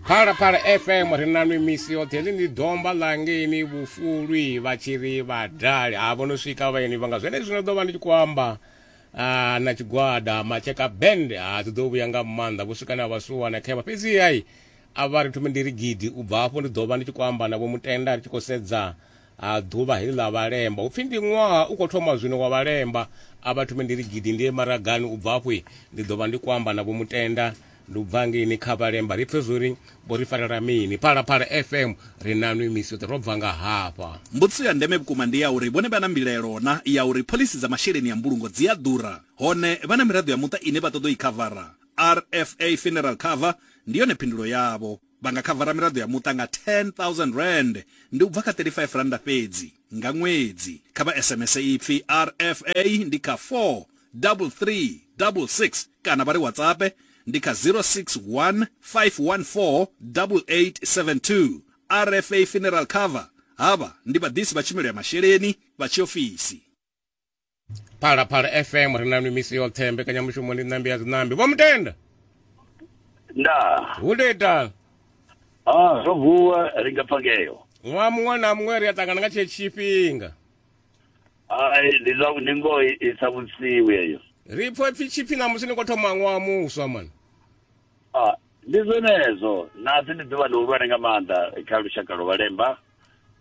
phalaphala fm ri na nwi misi yoṱhe ḽi ndi domba ḽangeni vhufulwi vha tshi ri vhadali ha vho no swika vhaeni vhanga zwene zwino ḓo vha ndi tshi khou amba ah, na tshigwada matsheka band ha ah, dzi ḓo vhuya nga maanḓa vho swika na vhasuwa na khevha fhedzi hai a vha ri thome ndi ri gidi u bva afho ndi ḓo vha ndi tshi khou amba na vho mutenda ri tshi khou sedza Ha ḓuvha heḽi ḽa vhalemba, hu pfi ndi ṅwaha u khou thoma zwino wa vhalemba. A vha thome ndi ri gidi ndi ye maragani, u bva afho ndi ḓo vha ndi khou amba na Vho Mutenda. Ndi u bva ngei ni kha vhalemba ri pfe zwo ri vho ri farela mini. Phalaphala FM ri na nwi misi yoṱhe ro bva nga hafha. Mbudziso ya ndeme vhukuma ndi ya uri vhone vha na mbilaelo na ya uri phoḽisi dza masheleni a mbulungo dzi a ḓura, hone vha na miraḓo ya muṱa ine vha ṱoḓa u i khavara? RFA Funeral Cover ndi yone phindulo yavho. Vha nga khavara miraḓo ya muṱa nga R10,000, ndi u bva kha R35 fhedzi, nga ṅwedzi. Kha vha SMS ipfi RFA ndi kha 43366 kana vha ri WhatsAppe ndi kha 061 514 8872. RFA Funeral Cover, Havha ndi vhaḓisi vha tshumelo ya masheleni vha tshiofisi. phalaphala fm ri na nwi misi yoṱhe mbekanyamushumo ndi ṋambi ya dziṋambi vho mutenda ndaa hu ndo ita ah zwo vuwa ri nga pfa ngeyo ṅwaha muṅwe na muṅwe ri a ṱangana nga tshee tshifhinga ai ndi zwa ndi ngoho i- i sa vhusiwi eyo ri pfo pfi tshipfi ṋamusi ni khou thoma ṅwaha muswa mani ah ndi zwenezwo nasi ndi ḓuvha ḽihulwane nga maanḓa kha lushaka lwa vhalemba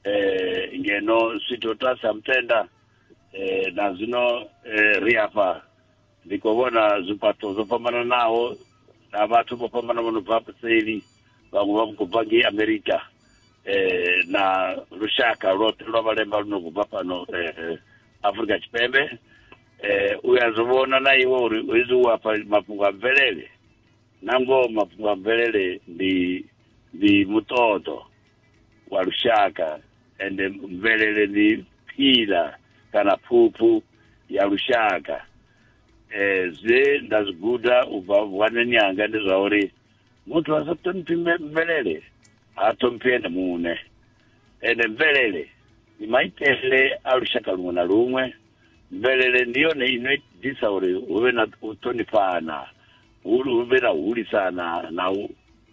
eh ngeno switho tasi ha mutenda eh, na zwino eh, ri afha ndi khou vhona zwifhaṱo zwo fhambananaho na vhathu vho fhambana vho no bva paseli vhaṅwe vha khou bva ngei amerika eh, na lushaka lwoṱhe lwa vhalemba lu no khou bva fhano eh, afrika tshipembe eh, u ya zwi vhona na iwe uri hezwi u afha mafhungo a mvelele na ngoho mafhungo a mvelele ndi ndi muṱoḓo wa lushaka ende mvelele ndi phila kana phuphu ya lushaka eh zwe nda zwi guda u bva vhuwanani hanga ndi zwa uri muthu a sa ṱhoniphi mve- mvelele ha ṱhoniphi ene muṋe ende mvelele ndi maitele a lushaka luṅwe na luṅwe mvelele ndi yone ino itisa uri hu vhe na u ṱhonifhana hu hu vhe na u hulisana na u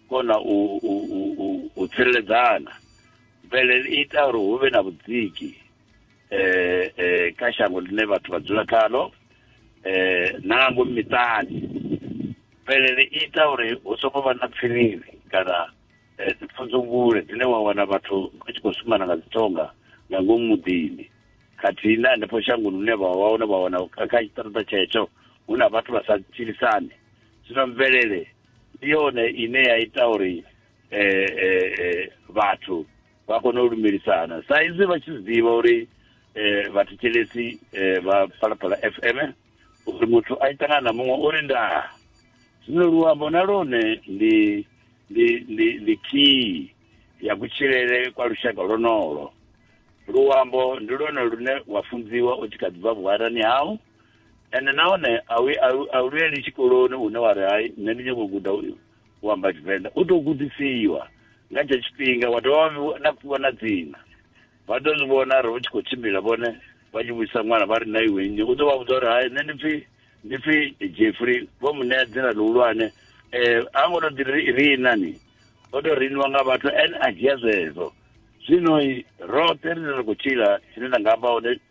kona u u- u- u- u tsireledzana mvelele i ita uri hu vhe na vhudziki eh, eh, kha shango ḽine vhathu vha dzula khalo eh, na nga ngomu miṱani mvelele i ita uri hu songo vha na pfiriri kana eh, dzipfunzungule dzine wa wana vhathu vha tshi khou shumana nga dzitonga nga ngomu muḓini khathihi na hanefho shangoni hune vha vha hone vha wana kha kha tshiṱaṱa tshetsho hu na vhathu vha sa tshilisani zwino mvelele ndi yone ine ya ita uri eh, eh, eh, vhathu vha kone u lumelisana sa izwi vha tshi zwiḓivha uri eh, vhathetshelesi eh, vha phalaphala fm uri muthu a tshi ṱangana na muṅwe uri ndaa zwino luambo na lone ndi ndi ndi ndi key ya kutshilele kwa lushaka lwonolo luambo ndi lwone lune wa funziwa u tshi kha ḓi bva vhuharani hau ende nahone a u luyeli tshikoloni une wa ri hai nṋe ndi nyoko guda u amba tshivenḓa u tou gudisiwa nga tshe tshifhinga wa dovha na fhiwa na dzina vha ḓo zwi vhona ri tshi khou tshimbila vhone vha tshi vhuisa ṅwana vha ri na iwe nnyi u ḓo vha vhudza uri hai nṋe ndi pfhi ndi pfhi jeffrey vho mu ṋea dzina ḽihulwane um a ngo to ḓi rina ni o to riniwa nga vhathu ene a dzhia zwezwo zwino roṱhe rine ra khou tshila tshine nda nga amba hone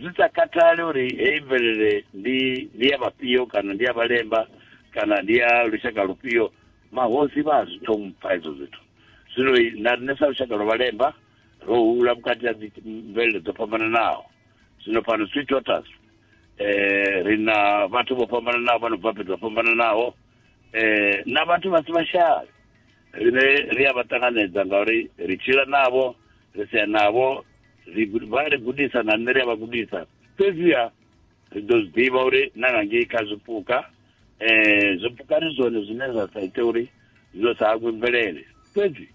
Zwi sa khathali uri heyi mvelele ndi ndi ya vhafhio kana ndi ya vhalemba kana ndi ya lushaka lufhio, mahosi vha a zwi ṱhompha hezwo zwithu. Zwino na riṋe sa lushaka lwa vhalemba ro hula vhukati ha dzi mvelele dzo fhambananaho. Zwino fhano Sweet Waters ri na vhathu vho fhambananaho vha no bva fhethu ho fhambananaho na vhathu vha si vhashavi. Riṋe ri a vha ṱanganedza ngauri ri tshila navho, ri sea navho. vha ri gudisa nga nḓila ya vha gudisa fhedziha ri ḓo zwi ḓivha uri na nga ngei kha zwipuka um zwipuka ndi zwone zwine zwa sa ite uri zwo sa hangwe mvelele fhedzi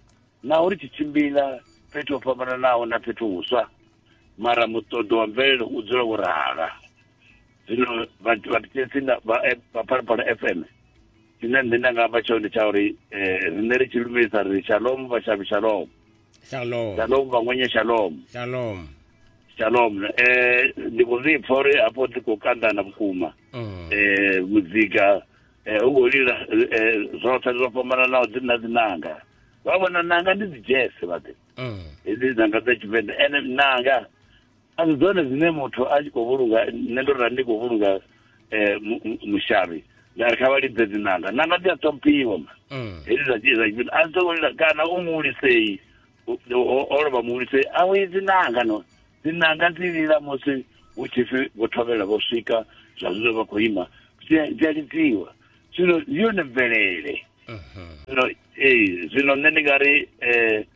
naho ri tshi tshimbila fhethu ho fhambananaho na fhethu huswa mara muṱoḓo wa mvelele u dzula wo rala zwino vhathu vha thetshelesi vha eh, phalaphala f m tshine nṋe nda nga amba tshone ndi tsha uri um riṋe ri tshi lumelisa ri shalom vhashavhi shalom shalom shalom vangwenye shalom shalom shalom eh ndi khou zwi pfa uri hafho ndi khou kandana vhukuma mm. eh muzika eh u khou lila eh, zwoṱhe zwo fhambananaho dzi na dzinanga vha vhona nanga ndi dzi jazz vhaḓe mm. hedzi nanga dza tshivenḓa ene nanga a si dzone dzine muthu a tshi khou vhulunga nṋe ndo rali ndi khou vhulunga um mushavhi nda ri kha vha lidze dzinanga nanga dzi a ṱhomphiwa ma mm. hedzi dza dzia dza a dzo lila kana u muhulisei o lovha muhulisei a wi dzinanga no dzinanga dzi lila musi hu tshi pfi vho thovhela vho swika zwa zwino vha khou ima dzi a lidziwa zwino ndi yone mvelele mhm. zwino ee zwino nṋe ndi nga ri um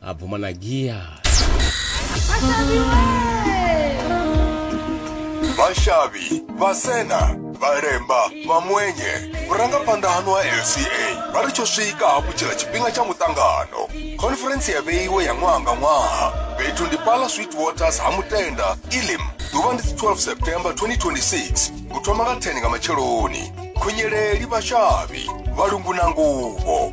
abvuma na gears vashavi vasena varemba vamwenye vurangaphanḓa hanu ha lca vha ri tsho swika hafhu tshila tshifhinga tsha muṱangano khonferentsi ya vheiwe ya ṅwaha nga ṅwaha fhethu ndi pala sweet waters ha mutenda ilim ḓuvha ndi 12 september 2026 u thoma nga 10 nga matsheloni khunyeleli vashavi valungu na nguvho